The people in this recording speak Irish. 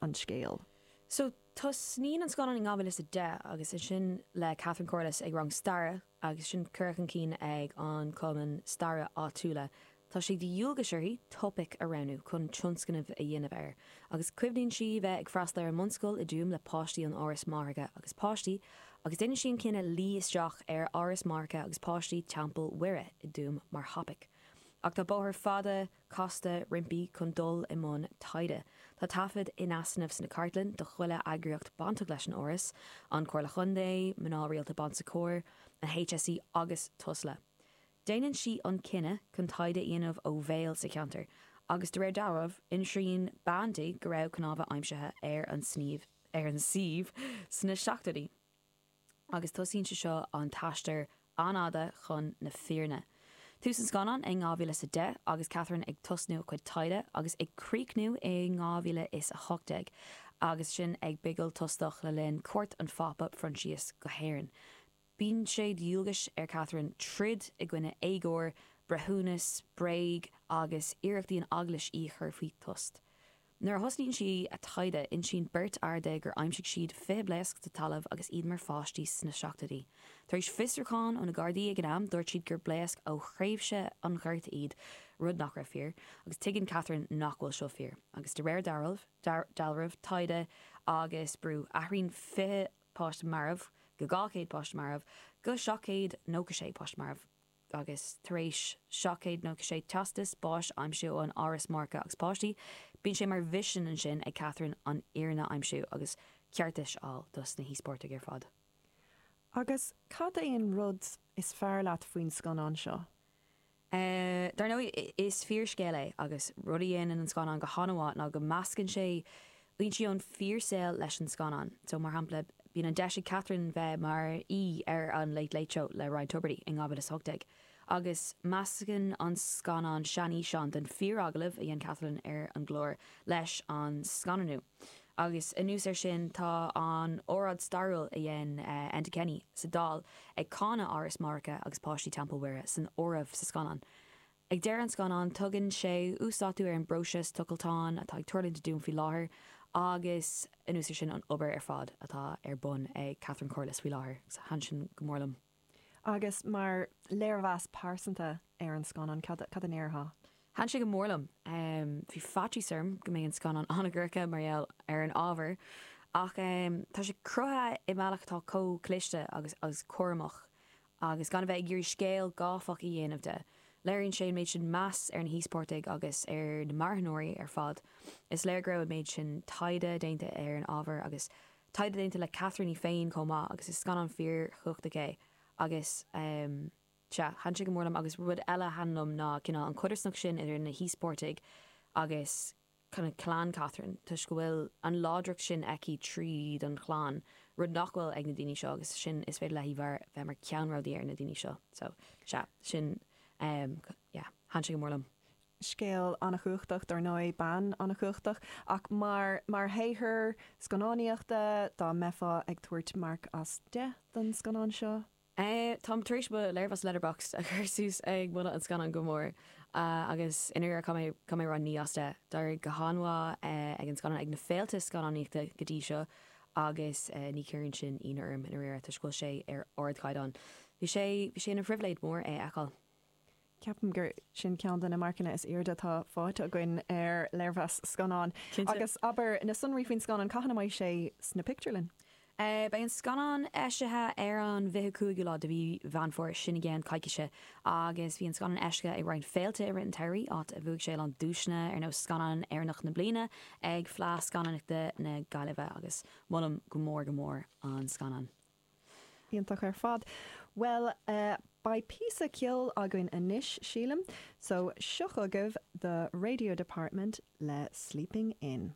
an scéal. So tosnaíonn an scannán in 2010 agus sinn le Catherine Corless ag rang staire agus sin curtha chun cinn ag an cumann staire áitiúla. Tá sé de dhualgais uirthi topaic a roghnú chun tionscnamh a dhéanamh air agus cuimhníonn sí bheith ag freastal ar an mbunscoil i dTuaim le páistí ón Áras Máithreacha agus Páistí agus déanann sí an cinneadh luí isteach ar Áras Máithreacha agus Páistí Teampall Mhuire i dTuaim mar thopaic ach tá bóthar fada casta roimpi chun dul i mbun taighde. Tá taifead in easnamh sna cartlainn do chuile eagraíocht bainteach leis an Áras, An Comhairle Chontae, Mná Rialta Bon Secours, an HSE agus Tusla. Déanann sí an cinneadh chun taighde a dhéanamh ó bhéal sa cheantar agus de réir dealraimh, insíonn bean di go raibh cnámha aimsithe ar an suíomh sna seachtóidí. agus tosaíonn sé seo an t-aistear an-fhada chun na fírinne. Tús an scannáin i 2000 is a deich agus Catherine ag tosnú a cuid taighde agus ag críochnú i 2000 is a hocht déag agus sinn ag bigil tostach le linn cuairt an Phápa Phroinsias go hÉirinn. Bíonn sé de dhualgais ar Catherine troid i gcoinne éagóir, breithiúnas, bréag agus iarrachtaí an Eaglais í a chur faoi tost. Nuair a thosnaíonn sí a taighde insíonn beirt fhear di gur aimsigh siad 20 blaosc sa talamh agus iad mar pháistí sna seachtóidí. Tar éis fiosrúcháin ó na Gardaí ag an am dúirt siad gur blaosc ó thréimhse an Ghorta iad, rud nach raibh fíor, agus tuigeann Catherine nach bhfuil seo fíor. Agus de réir dealraimh, taighde agus brú, athraíonn 20 páiste marbh go 200 páiste marbh go 796 páiste marbh. agus tar éis seacht gcéad nócha sé teastas báis a aimsiú ón Áras Máithreacha agus Páistí, bíonn sé mar mhisean ansin ag Catherine an fhírinne a aimsiú agus ceartais a fháil dos na híospartaigh ar fad. Agus cad é an rud is fearr leat faoin scannán seo? Dar ndóigh, is fíorscéal é agus rud a dhéanann an scannán go han-mhaith ná go meascann sé blúiríní ón fíor saol leis an scannán. So, mar shampla, bíonn an deis ag Catherine bheith mar aoi ar an Late Late Show le Ryan Tubridy in 2018 agus meascann an scannán seanfhíseán den fíor agallamh a dhein Catherine ar an gclár leis an scannánú agus anuas ar sin tá an óráid stairiúil a dhein Enda Kenny sa Dáil ag cáineadh Áras Máithreacha agus Páistí Teampall Mhuire san áireamh sa scannán. Ag deireadh an scannáin tugann sé uasdátú ar an bpróiseas tochaltáin atá ag tarlúint i dTuaim faoi láthair agus anuas ar sin an obair ar fad atá ar bun ag Catherine Corless faoi láthair. Thaitin sin go mór liom. Agus mar léirmheas pearsanta ar an scannán, cad a ndéarfá? Thaitin sé go mór liom. Bhí faitíos orm go mbeidh an scannán an-dhorcha mar gheall ar an ábhar ach tá sé cruthaithe i mbealach atá comh cliste agus cúramach Agus gan a bheith ag iarraidh scéal gáifeach a dhéanamh de, léiríonn sé an méid sin meas ar na híospartaigh agus ar na marthanóirí ar fad. Is léir go raibh an méid sin taighde déanta ar an ábhar agus taighde déanta le Catherine í féin chomh maith agus is scannán fíorchumhachtach é agus sea, thaitin sé go mór liom agus rud eile a thaitin liom ná cineál an chodarsnacht sin idir na híospartaigh agus clann, clann Catherine toisc go bhfuil an láidreacht sin aici tríd an chlann, rud nach bhfuil ag na daoine seo agus sin is féidir léi a bheith mar ceannródaí ar na daoine seo so sea, sin em yeah thaitin sé go mór liom. scéal an-chumhachtach dár ndóigh, bean an-chumhachtach ach mar mar shaothar scannánaíochta dá mbeifeá ag tabhairt marc as deich don scannán seo? Táim tar éis mo léirmheas Letterboxd a chur suas ag moladh an scannáin go mór agus i ndáiríre thug mé naoi as deich. D'éirigh go han-mhaith leis an scannán ag na féilte scannánaíochta go dtí seo agus ní chuireann sin ionadh orm i ndáiríre toisc go bhfuil sé ar ardchaighdeán. Bhí sé ina phribhléid mór é a fheiceáil. Ceapaim gur sin ceann de na marcanna is airde atá fáighte againn ar léirmheas scannáin. Agus abair, na sonraí faoin scannán, cathain a mbeidh sé sna pictiúrlanna? Beidh an scannán eisithe ar an bhfiche cúigiú lá de mhí Mheán Fómhair, sin i gceann coicíse. Agus bhí an scannán eisithe ag roinnt féilte i rith an tsamhraidh, áit a bhuaigh sé a lán duaiseanna, ar nós Scannán Éireannach na Bliana ag Fleadh Scannánaíochta na Gaillimhe. Agus molaim go mór go mór an scannán. Iontach ar fad. Bhuel eh, beidh píosa ceoil againn anois, sílim, so seo chugaibh The Radio Department le Sleeping In.